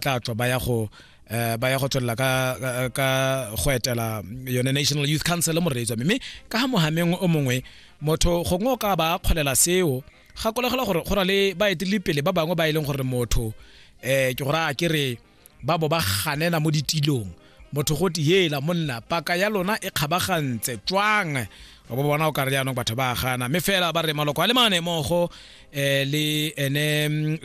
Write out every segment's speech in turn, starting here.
tla tswa ba ya go eh, ba ya go tswelela ka ka go etela yone national youth council mo reetswa mme ka ga mohameng o mongwe motho gongwe o ka ba kgolela seo gakolegela gore go na le baeteledipele ba bangwe ba e leng gore motho um ke gore a ke re ba bo ba ganela mo ditilong motho go te yela monna paka ya lona e kgabagantse tswang o bo bona o ka re jaanong batho ba gana mme fela ba re maloko a le mane mogo um eh, le ene um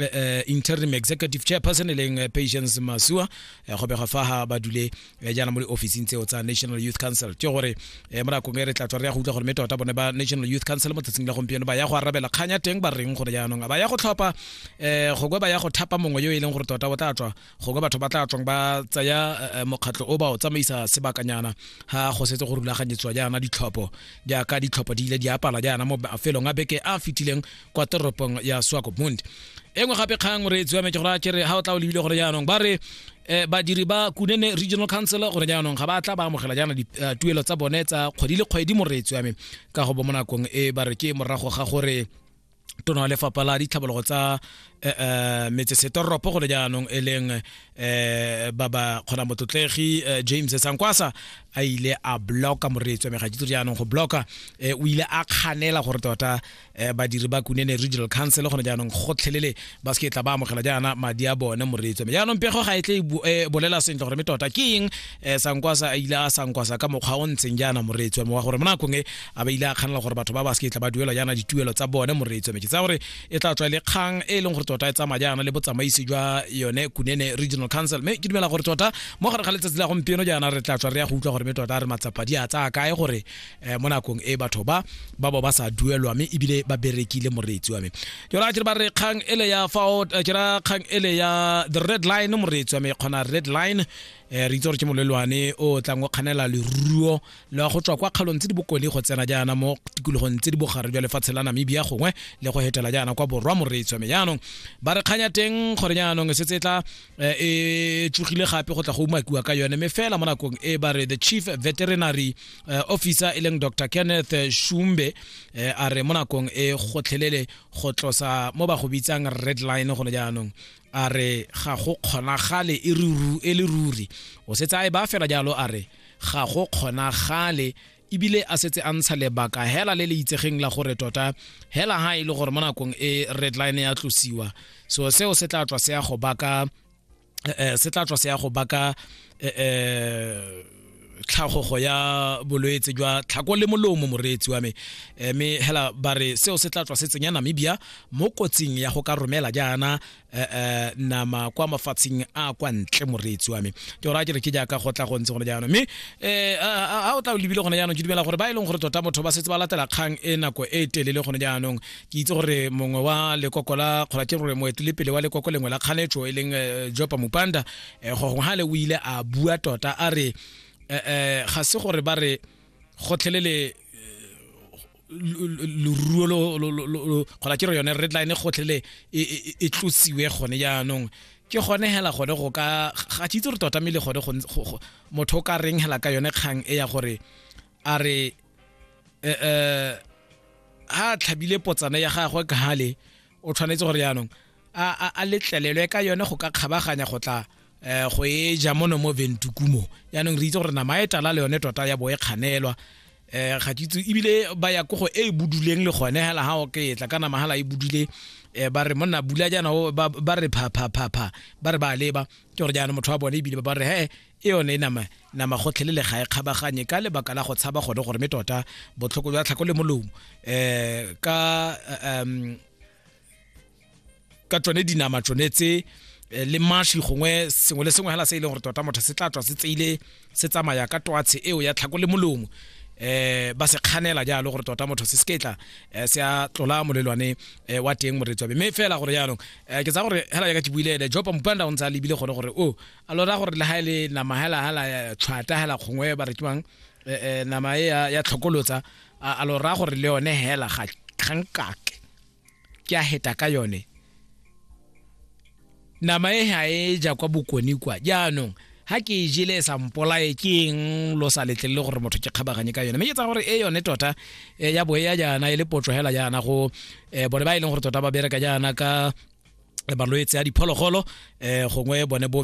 interim executive chairperson e leng eh, patience masua go bega fa ga ba dule jaana mo di-officing tseo tsa national youth council ke gore um mo nakong e re tla tswa re ya go utlwa gore mme tota bone ba national youth council mo tsatsing la gompieno ba ya go arabela kganya teng ba reng gore jaanong a ba ya go tlhopha um gongwe ba ya go thapa mongwe yo e leng gore tota o tla tswa gongwe batho ba tla tswang ba tsaya eh, eh, mokgatlho o ba o tsamaisa sebakanyana ha go setse go rulaganyetswa jaana ditlhopho jaaka ditlhopho di ile di apala jaana mo mafelong a beke a fitileng kwa toropong ya swakopmund e nngwe gape kgang re tswa me ke gore a kere ga o tla o lebile gore jaanong ba re um badiri ba kunene regional council gore jaanong ga ba tla ba amogela jaana dituelo eh, tsa bone tsa kgwedi le kgwedi mo re tswa me ka go bo mo nakong e ba re ke morago ga gore tona wa lefapha la ditlhabologo tsa eh, eh, metsesetoropo gole jaanong e leng um ba ba kgona motlotlegi james sankwasa a ile a bloka moreetswa megatitso jaanong go bloka um o ile a kganela gore tota um badiri ba kunene regional council gone jaanong gotlhelele ba se ke tla ba amogela jaana madi a bone moreetso mme jaanong pego ga e tle e bolela sentle gore mme tota ke eng um sankwasa a ile a sankwasa ka mokgwa o ntseng jaana moreetso mme wa gore mo nakong e a ba ile a kganela gore batho ba ba se ke tla ba duelwa jaana dituelo tsa bone moreetso mme ke tsa gore e tla tswa le kgang e leng gore tota e tsamaya jaana le botsamaisi jwa yone kunene regional council mme ke dumela gore tota mo gare ga letsatsi la gompieno jaana re tla tswa re ya go utlwa gore mme tota re matsapa di a tsaya kae gore eh, mo nakong e batho ba ba bo ba sa duelwa mme ebile ba berekile moreetsi wa me ke ra ke ba re kgang ele ya fa eh, ke ra kgang ele ya the red line moreetsi wa me kgona red line eh, re itse gore ke molelwane o tlang o kganela leruo la go tswa kwa kgalong tse di bokone go tsena jaana mo tikologong tse di bogare jwa lefatshe la namibia gongwe le go hetela jaana kwa borwa moreetsi wa me jaanong ba re kganya teng gore jaanong e setse e tla eh, e tsogile gape go tla go umakiwa ka yone mme fela mo nakong e ba re the chief veterinary eh, officer e leng dr kenneth shumbe eh, a re mo nakong e gotlhelele go tlosa mo ba go bitsang red line gone jaanong a re ga go kgonagale e ruru- e le ruri o setse a e ba fela jalo a re ga go kgonagale ebile a setse a ntsha lebaka hela le le itsegeng la gore tota hela ha e le gore mo nakong e red line ya tlosiwa so seo se tla tswa se ya go baka se tla tswa se ya go baka tlhagogo ya bolwetse jwa tlhako le molomo moreetsi wa me eh, mme hela ba re seo se tla tswa se tsenya namibia mo kotsing ya go ka romela jaana eh, eh, nama kwa mafatsheng a kwa ntle moreetsi wa me ke ora ke re ke jaaka go tla go ntse gone jaanong mme a o tla o lebile gone jaanong ke dumela gore ba e leng gore tota motho ba setse ba latela kgang e nako e telele gone jaanong ke itse gore mongwe wa lekoko la kgolatše gore moetelepele wa lekoko lengwe la kganetso e leng eh, jopa mopanda um eh, gogongwe ga le o ile a bua tota a re um ga se gore ba re gotlhelele leruo gola ke re yone red line gotlhele e, e, e, e tlosiwe gone jaanong ke gone hela gone go ka ga tšitse re totamele gone motho o ka reng hela ka yone kgang e ya gore a re eh, eh, ha tlhabile potsana ya gagwe ka hale o tshwanetse gore yaanong a letlelelwe ka yone go ka kgabaganya go tla eh, go e ja mono mo ventukumo yaanong re itse gore nama e tala le yone tota ya bo e kganelwa um ga ke itse ebile ba ya kogo e e buduleng le gone hela ga o ke tla ka nama hala e budule um ba re monna bula jaana ba re phaphapha ba re ba leba ke gore jaana motho wa bone ebile ba re he e yone e nama nama gotlhelele ga e kgabaganye ka lebaka la go tshaba gone gore me tota botlhoko jwa tlhako le molomo um ka um ka tsone dinama tsone tse eh, le mashi gongwe sengwe le sengwe hela se e leng gore tota motho se tla tswa se tseile se tsamaya ka twatshe eo ya tlhako le molomo eh ba se kganela jalo gore tota motho se seketla eh, se a tlola molelwane eh, wa teng moretswabe mme fela gore jaanong eh, ke tsa gore hela jaaka ke buile ene jopa mopanda o ntse a lebile gone gore o oh, a lo raya gore le ga e le nama hela hela ya tshwata hela kgongwe ba re ke bang eh, eh, nama e ya ya tlhokolotsa a a lo raya gore le yone hela ga kgankake ke a heta ka yone nama e ga e ja kwa bokone kwa jaanong ha ke e jele e sa mpolae ke eng lo sa letlelele gore motho ke kgabaganye ka yone mme ke tsa gore e yone tota eh, ya boe ya jaana e le potso hela jaana go eh, bone ba e leng gore tota ba bereka jaana ka eh, malwetse a diphologolo eh, gongwe bone bo